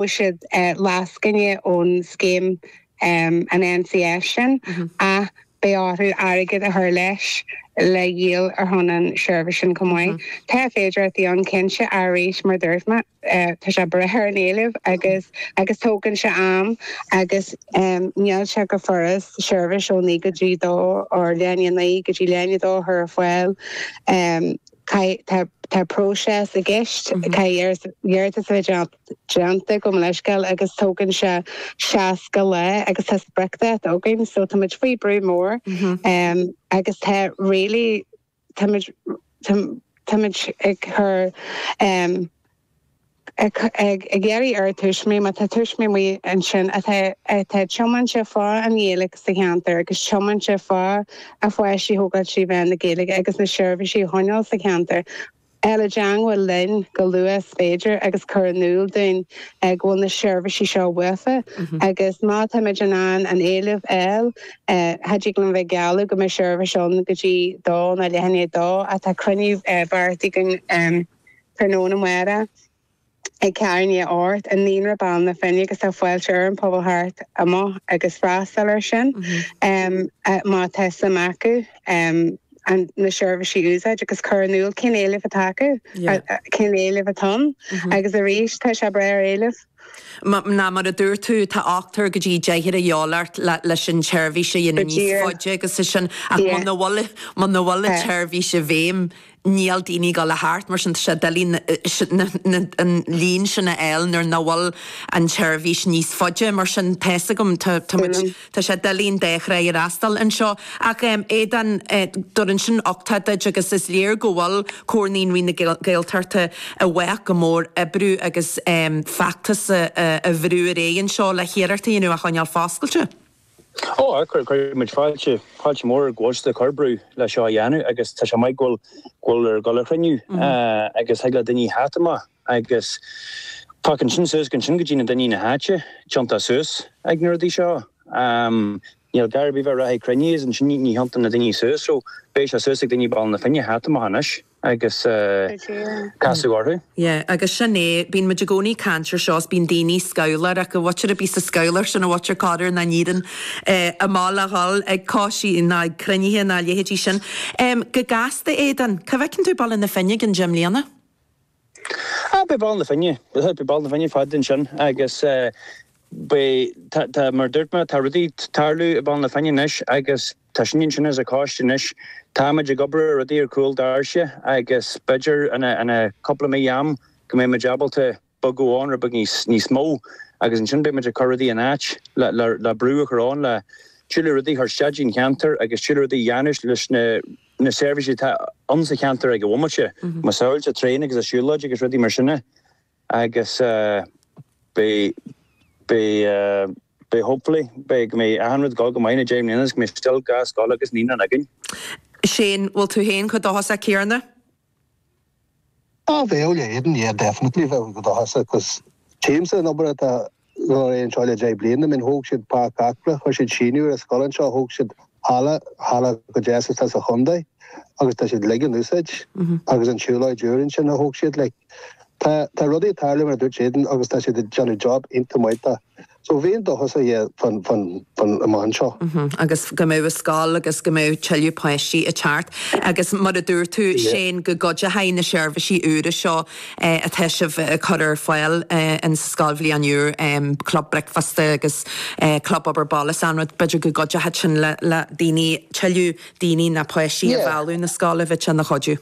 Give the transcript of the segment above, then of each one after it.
bhfaighidh siad lascaine ón scéim an NCS sin ach beidh orthu airgead a chur leis le dhíol ar shon an seirbhís sin chomh maith. Tá féidireachtaí ann cinnte ach arís mar dúirt mé tá sé ag brath ar an éileamh agus agus tógann sé am agus níl sé go furast seirbhís ó naoi go dtí dó nó leath i ndiaidh a naoi go dtí leath i ndiaidh a dó a chur ar fáil. Tá tá tá próiseas i gceist. Caithfidh iarratas a bheith déanta. déanta gabh mo leithscéal agus tógann sé 60 lá agus tá spriocdháta againn so táimid faoi brú mór agus tá really táimid táimid ag cur ag ag iarraidh ar tuismitheoirí má tá tuismitheoirí ansin atá atá tiomanta fá an Ghaeilge sa cheantar agus tiomanta fá a bpáistí a thógáil trí mheán na Gaeilge agus na seirbhísí a choinneáil sa cheantar dhul i dteangmháil linn chomh luath is féidir agus cur in iúl dúinn go bhfuil na seirbhísí seo uafa agus má táimid in ann an éileamh a fháil cha dtig linn bheith ag gealladh go mbeidh seirbhís ann go dtí dó ná leath i ndiaidh a dó ach tá cruinniú beartaithe againn tráthnóna amárach ag ceathrú i ndiaidh a hocht i Naíonra Bhaile na Finne agus tá fáilte roimh an pobal theacht amach agus freastal ar sin má tá suim acu na seirbhísí a úsáid agus cur in iúl cén éileamh atá acu, cén éileamh atá ann agus arís tá sé ag brath ar éileamh. Ná mar a dúirt tú tá ochtar go dtí deichniúr a dhíobháil ort leis an tseirbhís a dhéanamh níos faide agus é sin ach muna bhfuil an tseirbhís i bhfeidhm Níl daoine ag dul a theacht, mar sin tá sé doiligh an líon sin a fháil nuair nach bhfuil an tseirbhís níos faide. Mar sin, tá fhios agam, tá muid, tá sé doiligh an dá thrá a fhreastal anseo. Ach em, Aodán, do rinne sin uchtá duit agus is léir go bhfuil Comhar Naíonraí na Gaeltachta i bhfách go mór oibriú agus em, feachtas a bhrú ar aghaidh anseo le hiarracht a dhéanamh é a choinneáil foscailte. Ó, cuirfimid fáilte, fáilte mhór roimh choiste comhoibriú le seo a dhéanamh agus tá sé maith go bhfuil, go bhfuiltear ag dul a chruinniú agus thig le daoine theacht amach agus fágann sin suas ansin go dtí na daoine na háite tiontú suas ag na rudaí seo. Níl gar ar bith bheith ag reathaigh cruinniú is ansin ní thiontaíonn na daoine suas so beidh sé suas ag daoine Baile na Finne theacht amach anois. agus casadh orthu. Yeah agus sin é, bíonn muid i gcónaí ag caint ar seo is bíonn daoine scoileáir acu, bhfaightear a bith sa scoil ar sin a bhfaightear conair ná níreann a mball a dhul ag coistí ná ag cruinnithe ná a leithéidí sin. Go gasta Aodán, cá bhfeiceann tú Baile na Finne i gceann deich mbliana? Ah beidh Baile na Finne, beidh Baile na Finne fad ansin agus beidh, tá mar a dúirt mé, tá rudaí ag tarlú i mBaile na Finne anois agus Tá sin ansin insa choiste anois. Táimid ag obair ar rudaí ar chúl doirse agus b'fhéidir ina cúpla mí am go mbeidh muid ábalta bogadh ann rud beag níos mó agus ansin beidh muid ag cur rudaí in áit le brú a chur ann le tuilleadh rudaí a chur isteach insa cheantar agus tuilleadh rudaí a dhéanamh leis na seirbhísí atá ann sa cheantar ag an bhomaite. Macasamhail an traein agus siúlóid agus rudaí mar sin. Agus beidh, beidh, beidh hopefully, beidh, go mbeidh achan rud go go maith in na deich mbliana is go mbeidh still dhá scoil agus naíonra againn. Sea, an bhfuil tú féin chomh dóchasach Ciarán? Á bheadh le Aidan, yeah definitely bheadh go dóchasach cause tchímse an obair atá gabháil ar aghaidh anseo le deich mbliana I mean thóg siad Páirc Acla, chuir siad síneadh ar an scoil anseo, thóg siad halla, halla chomh deas is atá sa chondae agus tá siad uilig in úsáid agus an tsiúlóid úr ansin a thóg siad like. Tá, tá rudaí ag tarlú mar a dúirt Aidan agus tá siad ag déanamh job iontach maith de. So bheinn dóchasach fán, fán, fán amach anseo. Agus go mbeidh an scoil agus go mbeidh tuilleadh páistí ag teacht agus mar a dúirt Susan go gcuideochadh na seirbhísí úra seo atá sibh ag cur ar fáil in sa scoilbhliain úr, club bricfeasta agus club obair baile is achan rud. B'fhéidir go gcuideochadh sin le daoine, tuilleadh daoine nó páistí a mhealladh 'na scoile, bheadh sé ina chuidiú.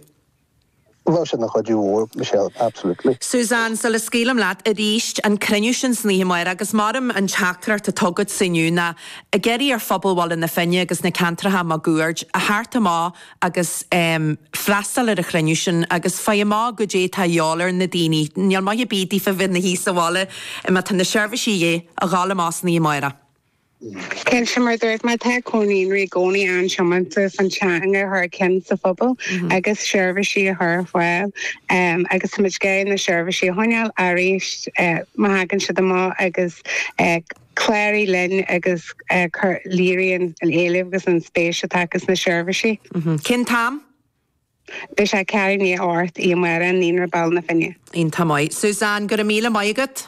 Bheadh sé ina chuidiú mhór Michelle, absolutely. Susan, sula scaoilim leat, arís an cruinniú sin san oíche amárach, agus m'orm an teachtaireacht atá agatsa inniu ná, ag iarraidh ar phobal Bhaile na Finne agus na ceantracha maguaird a theacht amach, agus freastal ar an chruinniú sin agus faigh amach goidé tá a dhíobháil ar na daoine. Níl maith ar bith daofa bheith 'na suí sa bhaile má tá na seirbhísí a dhíobháil, amach san oíche amárach. Cinnte, mar a dúirt mé tá Comhar Naíonraí i gcónaí an-tiomanta an teanga a chur chun cinn sa phobal agus seirbhísí a chur ar fáil agus tá muid ag iarraidh na seirbhísí a choinneáil aríst má thagann siad amach agus Cláraigh linn agus cuir léiriú an éilimh agus an spéis atá acu sna seirbhísí. Cén t-am a bheas sé? Ceathrú i ndiaidh a hocht oíche amárach i Naíonra Bhaile na Finne. Iontach maith. Susan, go raibh míle maith agat.